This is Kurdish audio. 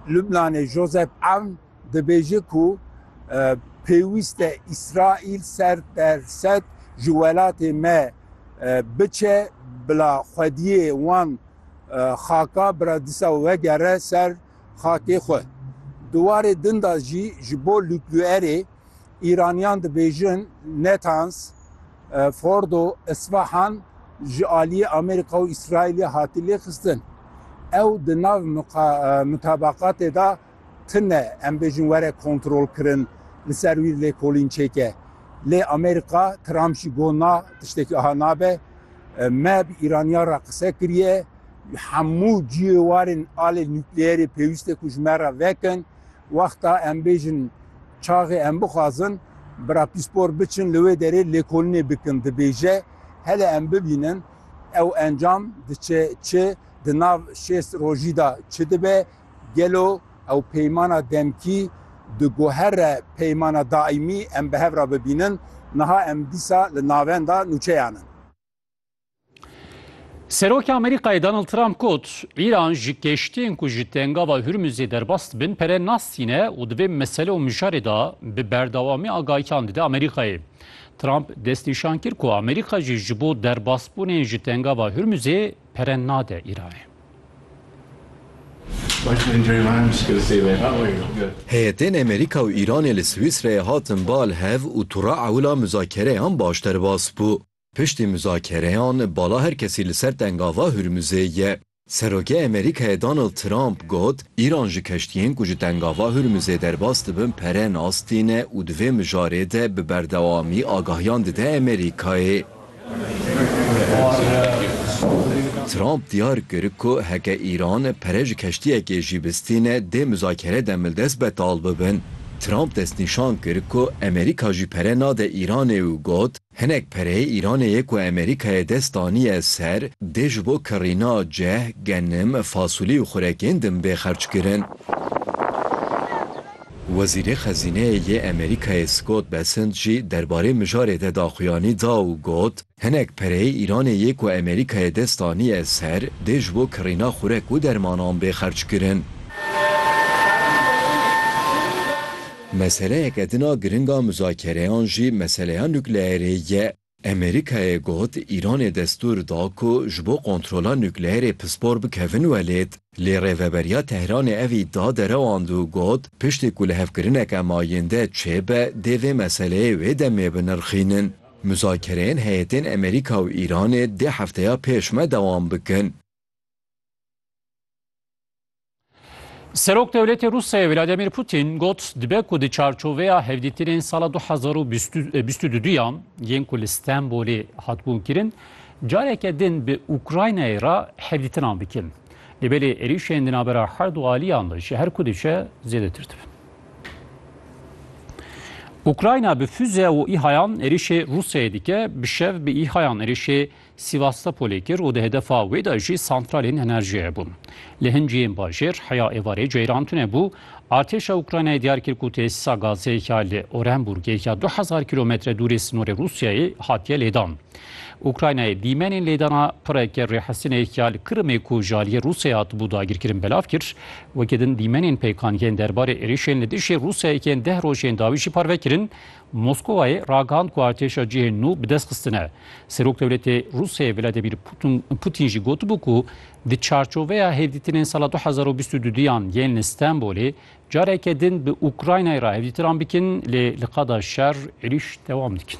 Lubnanê Josep Aoun dibêje ku pêwîst e Îsraîl ser per sed ji welatê me biçe bila xwediyê wan xaka bira disa wegere ser xakê xwe. Di warê din de jî ji bo Lubluerê Îraniyan dibêjin Netans, Fordo, Isfahan ji aliyê Amerîka û Îsraîlê hatî lêxistin. Ew di nav mutabaqatê de tune em bêjin were kontrolkirin li ser wî lêkolîn çêke. Lê Amerîka Trump jî got na tiştekî aha nabe. Me bi Îraniyan re qise kiriye. Hemû cihêwarên alê nukleerê pêwîste ku ji me re vekin. Wexta em bêjin çaxê em bixwazin bira pîspor biçin li wê derê lêkolinê bikin dibêje hele em bibînin ew encam diçe çi, di nav şêst rojî de çi dibe, gelo ew peymana demkî diguhere peymana daîmî em bi hev re bibînin, niha em dîsa li navenda nûçeyan in. Serokê Amerîkayê Donald Trump got, Îran ji keştiyên ku ji tengava Hurmuzê derbas dibin pere nastîne û di vê mesele û mijarê de bi berdewamî agahiyan dide Amerîkayê. Trump destnîşan kir ku Amerîka jî ji bo derbasbûnên ji tengava Hurmuzê pere nade Îranê. Heyetên Amerîka û Îranê li Swîsreyê hatin bal hev û tûra ewila muzakereyan baş derbas bû. Piştî muzakereyan bala her kesî li ser tengava Hurmuzê ye. Serokê Amerîkayê Donald Trump got, Îran ji keştiyên ku ji tengava Hurmuzê derbas dibin pere nas tîne û di vê mijarê de bi berdewamî agahiyan dide Amerîkayê. Trump diyar kir ku heke Îran pere ji keştiyekê jî bistîne dê muzakere demildest betal bibin. Trump destnîşan kir ku Amerîka jî pere nade Îranê û got, Hinek perê Îranê yê ku Amerîkayê dest daniye ser dê ji bo kirîna ceh, genim, fasulî û xurekên din bê xerç kirin. Wezîrê Xezîneyê yê Amerîkayê Scott Bessent jî derbarê mijarê de daxuyanî da û got, Hinek perê Îranê yê ku Amerîkayê dest daniye ser dê ji bo kirîna xurek û dermanan bê xerç kirin. Meseleyeke din a giring a muzakereyan jî meseleya nukleerê ye. Amerîkayê got Îranê destûr da ku ji bo kontrola nukleerê pispor bikevin welêt. Lê Rêveberiya Tehranê ev îdia derewand û got piştî ku lihevkirineke mayînde çêbe dê vê meseleyê wê demê binirxînin. Muzakereyên heyetên Amerîka û Îranê dê hefteya pêş me dewam bikin. Serok Dewletê Rûsyayê Vladimir Putin got dibe ku di çarçoveya hevdîtinên sala 2022 yan yên ku li Stenbolê hatbûn kirin careke din bi Ukraynayê re hevdîtinan bikin. Li belê êrîşên di navbera her du aliyan de ji her ku diçe zêdetir dibin. Ukrayna bi füze û îhayan êrîşê Rûsyayê dike, bi şev bi îhayan êrîşê Sivastopolê kir û di hedefa wê de jî santralên enerjiyê bûn. Li hin cihên bajêr heya êvarê ceyran tune bû. Artêşa Ukraynayê diyar kir ku tesîsa gazê ya li Orenburgê ya du hezar kîlometre dûrê sinorê Rûsyayê hatiye lêdan. Ukraynayê dîmenên lêdana pireke rêhestinê ya li Kirimê ku ji aliyê Rûsyayê hatibû dagirkirin belav kir. Weke din dîmenên pêkan yên derbarê êrişên li dijî Rûsyayê yên deh rojên dawî jî parve kirin. Moskowayê ragihand ku artêşa cihên nû bi dest xistine. Serokwdewletê Rûsyayê Vladimir Putîn jî gotibû ku di çarçoveya hevdîtinên sala du hezar û bîst û du duyan yên li Stenbolê careke din bi Ukraynayê re hevdîtiran bikin lê li qada şer êrîş dewam dikin.